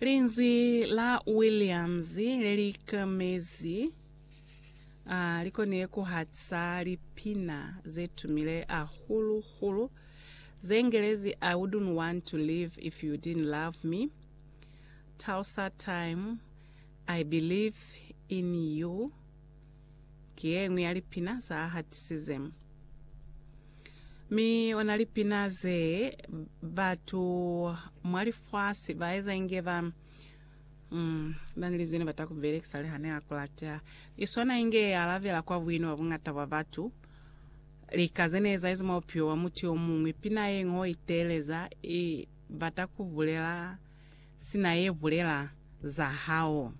Linzwi la Williams le li kamezi a li konile ku hatisa lipina ze tumile hahulu-hulu ze Ngelezi I Wouldn't Want to Live If You Didn't Love Me, Tulsa Time, I Believe in You, ki ye ñwi ya lipina za hatisize. Mi ona lipina ze batu mwa lifasi ba eza inge ba mm, na ni lizwi ne bata ku belekisa le ha ne a kulata. I swana inge ye alabela kwa buino bwa bungata bwa batu. Lika ze ne ezahezi mwa bupilo bwa mutu yo muñwi, pina ye ñwi o iteeleza i bata ku bulela sina ye bulela za hao.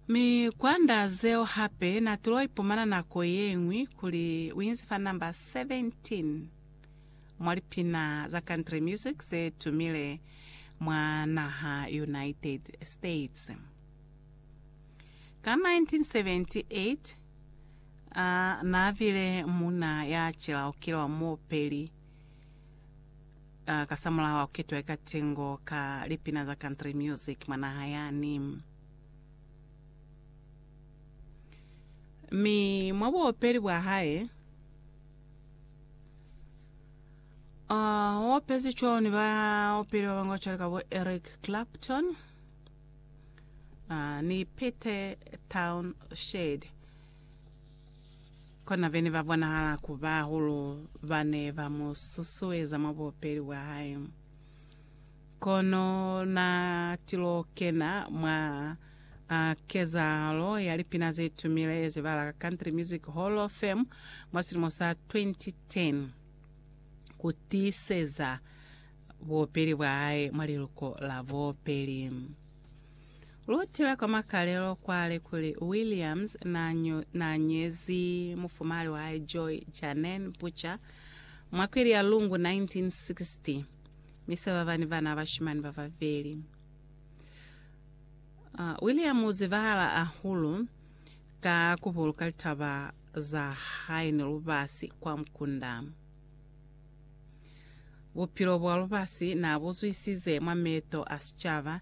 Mi kwanda zeo hape na tulo ipumana nako yengwi kuli uinzi fa number 17 mwa lipina za country music ze tumile mwa naha United States. Ka 1978 a na bile muna ya cilaukilwa muopeli Ah, kasamulaho wa kuketwa eka tengo ka lipina za country music mwa naha yani. Mi mwa buopeli bwa hae, ah, o opezi cwalo ni baopeli ba banga cwale ka bo Eric Clapton ah, ni Pete Townshend. Kona bene ba bonahala ku ba hulu ba ne ba mu susueza mwa bupeli bwa hae. Kono na tilo kena mwa a kezahalo ya lipina ze tumile ze ba la ka Country Music Hall of Fame mwa silimo sa 2010 ku tiiseza bupeli bwa hae mwa liluko la bupeli. Lu tila kwa makalelo kwale kuli Williams n'a nyezi mufumali wa hae Joy Janeen Butcher mwa kweli ya Lungu 1960, mi se ba ba ni bana ba bashimani ba babeli. William u zibahala hahulu ka ku buluka litaba za hae ni lubasi kwa mukunda. Bupilo bwa lubasi n'a bu zwisize mwa meeto a sicaba,